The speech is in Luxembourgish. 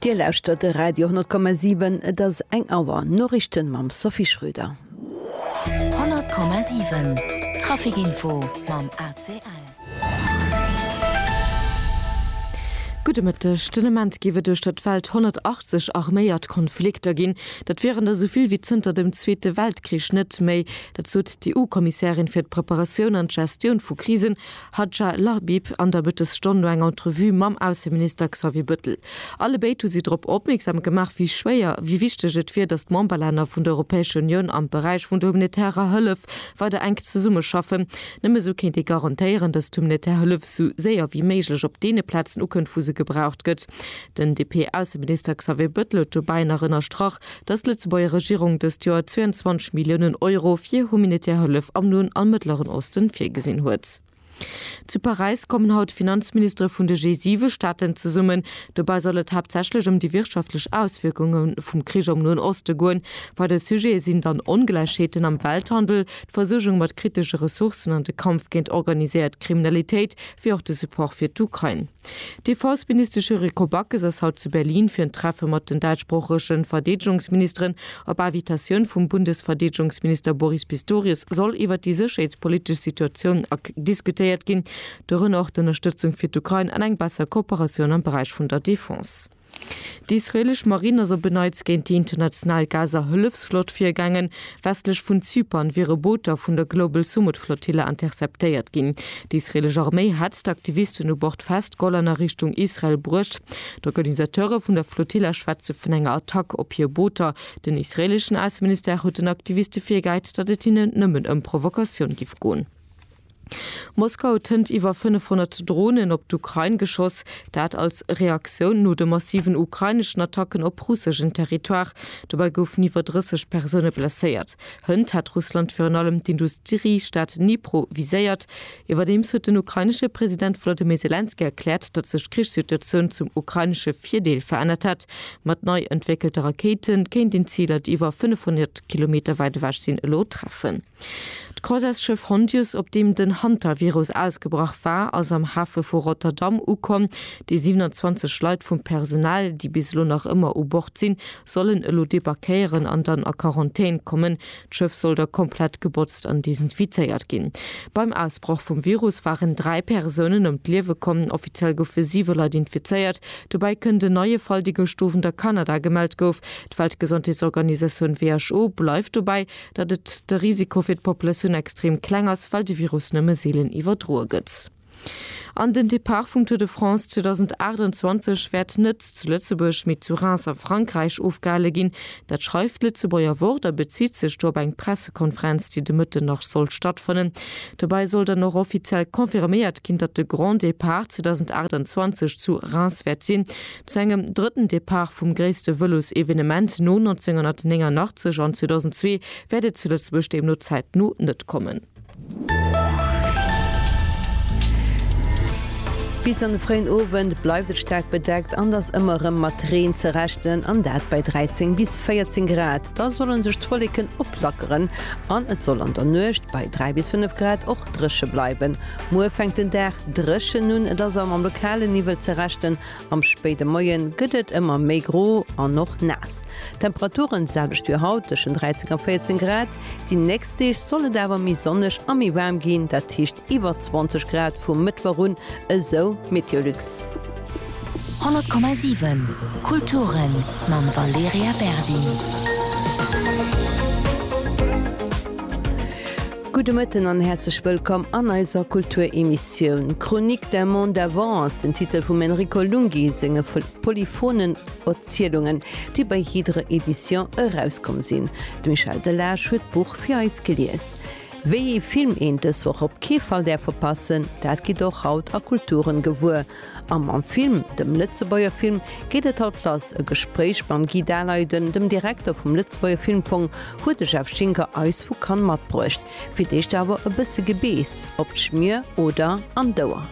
Dir lauschtert de Radio 10,7. Et ass eng Auer. Noriichten mam Sophie Schröder. 100,7 Trafikinfo mam ACL. Gudde Mëtteg. Den Ament géif et duerch der d'Welt 180 arméiert Konflikter ginn. Dat wieren der esou vill wéi zënter dem Zweete Weltkrich net méi. Dat sot d'EU-Kommissärin fir d'Preparatioun an d'Gestioun vu Krisen, Hadja Lahbib an der Mëttesstonn no enger Entrevue mam Ausseminister Xavier Bëttel. Alle béid hu si drop opmierksam gemaach, wéi schwéier, wéi wichteg et wier, datt d'Memberlänner vun der Europäescher Unioun am Beräich vun der humanitärer Hëllef weider enk zesummeschaffen. Nëmme esou kéint ee garantéieren, datt d'humanitär Hëllef esou séier wéi méiglech op deene Plazen ukënnt, wou se gebraucht gëtt. Den DP-Ausseminister Xavier Bëttel huet dobäi nach ënnerstrach, dass d'Lëtzebuerger Regierung dëst Joer 22 Milliounen Euro fir humanitär Hëllef am Noen a Mëttleren Osten virgesinn huet. Zu Paräis kommen haut d'Finanzministere vun de G7-Staaten zesummen. Dobäi soll et haaptsächlech ëm déi wirtschaftlech Auswierkunge vum Krich am Noen Oste goen. Weider Sujete sinn dann Ongläichheeten am Welthandel, d'Versuergung mat kritesche Ressourcen an de Kampf géint organiséiert Kriminalitéit, wéi och de Support fir d'Ukrain. D'Defenseministesch Rico Backes ass haut zu Berlin fir en Treffe mat den däitschsproochege Verdeedegungsministeren. Op Invitatioun vum Bundesverdeedegungsminister Boris Pistorius soll iwwer déi sécherheetspolitesch Situatioun ak diskutéiert ginn, dorënner och d'Ënnerstëtzung fir d'Ukrain an eng besser Kooperatioun am Beräich vun der Defense. D'israelesch Marinn ass op en Neits géint déi international Gaza-Hëllefsflott virgaangen. Westlech vun Zypern wiere Booter vun der Global Sumud-Flottille interceptéiert ginn. D'israelesch Arméi hätt d'Aktivisten u Bord festgeholl an a Richtung Israel bruecht. D'Organisateure vun der Flotilla schwätze vun enger Attack op hir Booter. Den israeleschen Ausseministère huet den Aktiviste virgehäit, datt et hinnen nëmmen ëm Provokatioun giff goen. Moskau huet hënt iwwer 500 Dronen op d'Ukrain geschoss, dat als Reaktioun no de massiven ukraineschen Attacken op russeschen Territoire. Dobäi goufen iwwer 30 Persoune blesséiert. Hënt hat Russland virun allem d'Industriestad Dnipro viséiert. Iwwerdeems huet den ukrainesche President Volodymyr Selenskyj erkläert, datt sech d'Krichssituatioun zum ukrainesche Virdeel verännert hätt. Mat nei entwéckelte Rakéite kéint een Ziler, déi iwwer 500 Kilometer wäit ewech sinn, elo treffen. D'Croisesschëff Hondius, op deem den Hantavirus ausgebrach war, ass am Hafe vu Rotterdam ukomm. Déi 27 Leit vum Personal, déi bis elo nach ëmmer u Bord sinn, sollen elo debarquéieren an dann a Quarantän kommen. D'Schëff soll da komplett gebotzt an desinfizéiert ginn. Beim Ausbroch vum Virus waren dräi Persounen ëm d'Liewe komm. Offiziell goufe siwe Leit infizéiert. Dobäi kënnt en neie Fall, dee gëscht Owend a Kanada gemellt gouf. D'Weltgesondheetsorganisatioun, who, bleift dobäi, datt et de Risiko fir d'Populatioun extrem kleng ass, well de Virus nëmme seelen iwwerdroe gëtt. An den Depart vum Tour de France 2028 wäert net zu Lëtzebuerg, mee zu Reims a Frankräich ofgehale ginn. Dat schreift d'Lëtzebuerger Wort a bezitt sech do op eng Pressekonferenz, déi de Mëtten nach sollt stattfannen. Dobäi soll dann och offiziell confirméiert ginn, datt de Grand Depart 2028 zu Reims wäert sinn. Zu engem drëtten Depart vum gréisste Vëlosevenement no 1989 an 2002 wäert et zu Lëtzebuerg deemno zäitno net kommen. Bis an de fréien Owend bleift et staark bedeckt an ass ëmmer erëm mat Reen ze rechnen, an dat bei 13 bis 14 Grad. Da solle sech d'Wolleken oplackeren an et soll an der Nuecht bei 3 bis 5 Grad och dréche bleiwen. Muer fänkt den Dag dréchen un, et ass a mam lokale Niwwel ze rechnen, Am spéide Moie gëtt et ëmmer méi gro an och naass. D'Temperature selwecht wéi haut, tëschent 13 a 14 Grad. Déi nächst Deeg soll et awer méi sonneg a méi waarm ginn, dat heescht iwwer 20 Grad vum Mëttwoch un, esou Meteolux. 100,7 Kulturen mam Valerija Berdi. Gudde Mëtten an häerzlech wëllkomm an eiser Kulturemissioun Chronique d'un monde avant ass den Titel vum Enrico Lunghi senge polyphonen Erzielungen, déi bei Hydre Edition erauskomm sinn. De Michel Delage huet d'Buch fir eis gelies. Wéi ee Film een dës Woch op kee Fall däerf verpassen, dat gitt och haut a Kulturen gewuer. Am Am Film, dem Lëtzebuerger Film, geet et haut lass, e Gespréich mam Guy Daleiden, dem Direkter vum Lëtzebuerger Filmfong, huet de Jeff Schinker eis vu Cannes matbruecht. Fir d'éischt awer e bësse Gebeess op d'Schmier oder an d'Ouer.